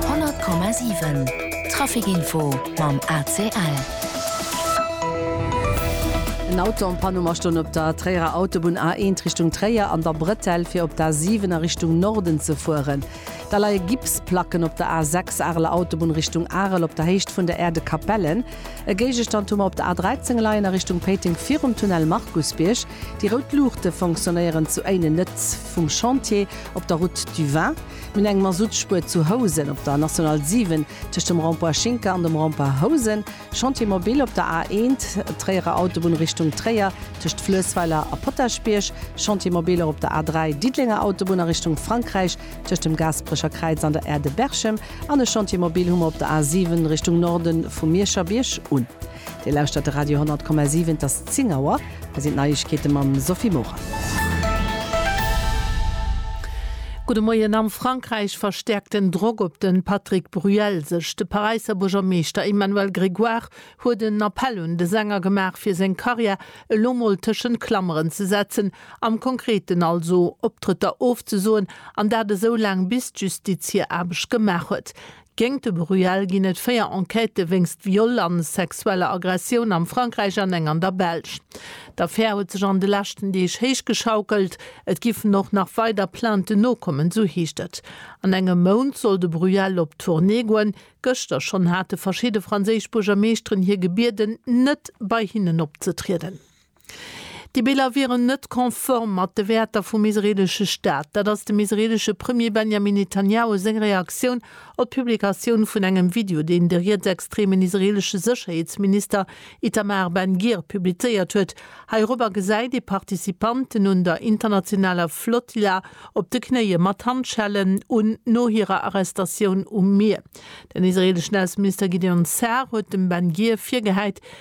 100,7 Trafic Info mam ACL. En Auto am Panum a stoung op der Tréierer Autobunn A1 Richtung Tréier an der Bretelle fir op d'A7 a Richtung Norden ze fueren. Da leie Gipsplacken op der A6 Areler Autobunn Richtung Arel op der Héicht vun der Aire de Capellen. E Géigestand hu mer op der A13 leien a Richtung Péiteng virum Tunnel Markusbierg. Déi rout Luuchte fonctionnéieren zu Éinen net. vum Chantier op der Route du Vin, minn eng Masuttspuer zu Housen op der National 7 tëscht dem Rond-point Schinker an dem Rond-point Housen, Chantier Mobil op der A 1, Tréierer Autobunn Richtung Tréier tëscht Fluessweiler a Potaschbierg, Chantier Mobiler op der A 3, Diddelenger Autobunn a Richtung Frankräich tëscht dem Gaasperecher Kräiz an der Aire de Berchem an e Chantier Mobil hu mer op der A 7 Richtung Norde vu Mierscherbierg un. Dir lauschtert de Radio 10,7, et ass 10 Auer. Hei sinn d'Neiegkeete mam Sophie Morang. Gudde Moien. Am Frankräich verstäerkt den Drock op de Patrick Bruel sech. De Paräisser Buergermeeschter Emmanuel Grégoire huet en Appell un de Sänger gemaach, fir seng Karriär elo mol tëschent Klammeren ze setzen, am Konkreten also Optrëtter ofzesoen, an dat esou laang bis d'Justiz hir Aarbecht gemaach huet. Géint de Bruel ginn et véier Enquêtë wéinst Viol a sexueller Aggressioun am Frankräich an eng an der Belsch. D'Affär huet sech an de leschten Deeg héichgeschaukelt. Et giffen och nach weider Plainten nokommen, sou heescht et. An engem Mount soll de Bruel op Tournée goen. Gëschter schonn hate verschidde franséisch Buergermeeschteren hie gebieden, net bei hinnen opzetrieden. Déi Biller wieren net konform mat de Wäerter vum israeelesche Staat. Dat ass dem israeelesche Premier Benjamin Netanjahu seng Reaktioun op d'Publikatioun vun engem Video, deen de rietsextremen israeelesche Sécherheetsminister Itamar Ben-Gir publizéiert huet. Heirobber gesäit ee Participanten un der internationaler Flotilla op de Knéie mat Handschellen un, no hirer Arrestatioun um Mier. Den israeeleschen Ausseminister Gideon Sa'ar huet dem Ben-Gir virgehäit,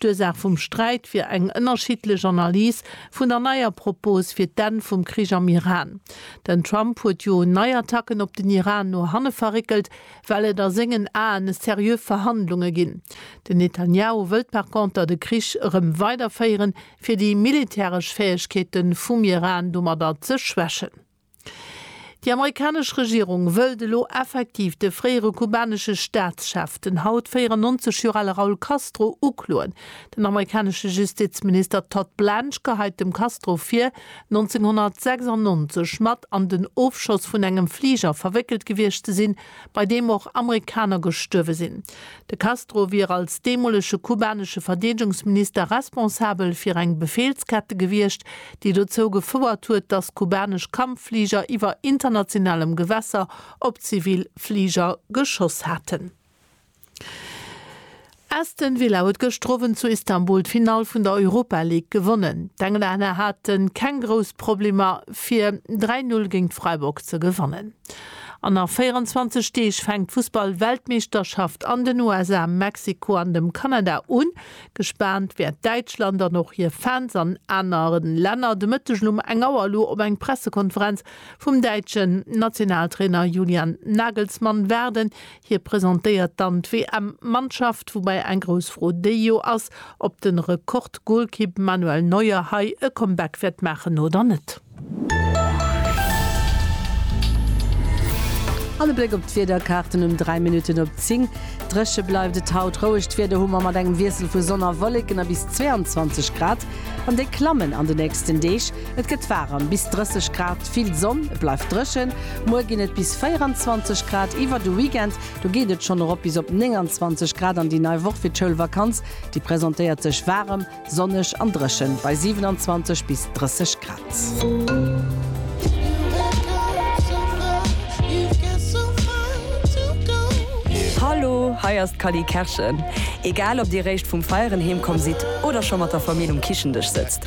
D'Ursaach vum Sträit wier eng ënnerschiddlech Analys vun der neier Propos fir d'Enn vum Krich am Iran. Den Trump huet jo nei Attacken op den Iran no hanne verréckelt, well et a sengen Aen seriö Verhandlunge ginn. Den Netanjahu wëllt par conter de Krich erëm weiderféieren, fir déi militäresch Fäegkeete vum Iran domadder ze schwächen. Déi amerikanesch Regierung wëllt elo effektiv de fréiere kubanesche Staatschef, den haut 94 Joer ale Raul Castro, ukloen. Den amerikanesche Justizminister Todd Blanche geheit dem Castro vir, 1996 mat an den Ofschoss vun engem Fliger verwéckelt gewiescht ze sinn, bei deem och Amerikaner gestuerwe sinn. De Castro wier als deemolege kubanesche Verdeedegungsminister responsabel fir eng Befehlskette gewiescht, déi dozou gefouert huet, datt kubanesch Kampffliger iwwer internationalem Gewässer op zivil Fliger geschoss haten. Aston Villa huet gëschter Owend zu Istanbul d'Finall vun der Europa League gewonnen. D'Englänner hate keng grouss Problemer fir 3, 0 géint Freiburg ze gewannen. An nach 24 Deeg fänkt d'Fussball-Weltmeeschterschaft an den USA, Mexiko an dem Kanada un. Gespaant wäert Däitschland an och hir Fans an anere Länner de Mëttegen um eng Auer elo op eng Pressekonferenz vum däitschen Nationaltrainer Julian Nagelsmann waarden, Hie presentéiert dann d'WM-Mannschaft, woubäi eng grouss Fro déi jo ass, ob de Rekord-Golkipp Manuel Neuer hei e Comeback wäert maachen oder net. An e Bléck op d'Wiederkaarten um 3 Minutten op 10. Dréche bleift et haut. Rouegt Wieder hu mer mat engem Wiessel vu Sonn a Wolleken a bis 22 Grad. An déi klammen an de nächsten Deeg. Et gëtt waarem, bis 30 Grad, vill Sonn, et bleift dréchen. Muer ginn et bis 24 Grad, iwwer de Weekend do geet et schonn erop bis op 29 Grad an déi nei Woch fir d'Schoulvakanz, déi presentéiert sech waarem, sonneg an dréchen bei 27 bis 30 Grad. Hallo, hei ass d'Cally Kerschen. Egal ob dir réischt vum Feieren heemkomm sidd oder scho mat der Famill um Kichen-Dësch sëtzt,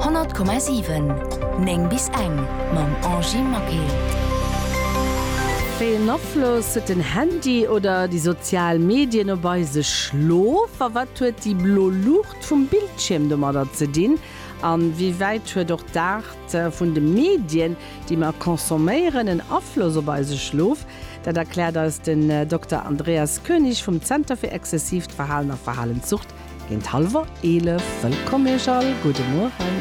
100,7 9 bis eng mam Angy Maquet. Wéi een Afloss huet den Handy oder déi sozial Medien op eise Schlof? A wat huet déi blo Luucht vum Bildschierm domadder ze dinn? A wéi wäit huet och d'Aart vun de Medien, déi mer consomméieren, en Afloss op eise Schlof? Dat erkläert eis den Dokter Andreas König vum Zenter fir exzessiivt Verhalen a Verhalenssucht Géint halwer 11. Wëllkomm Iech all, gudde Mueren.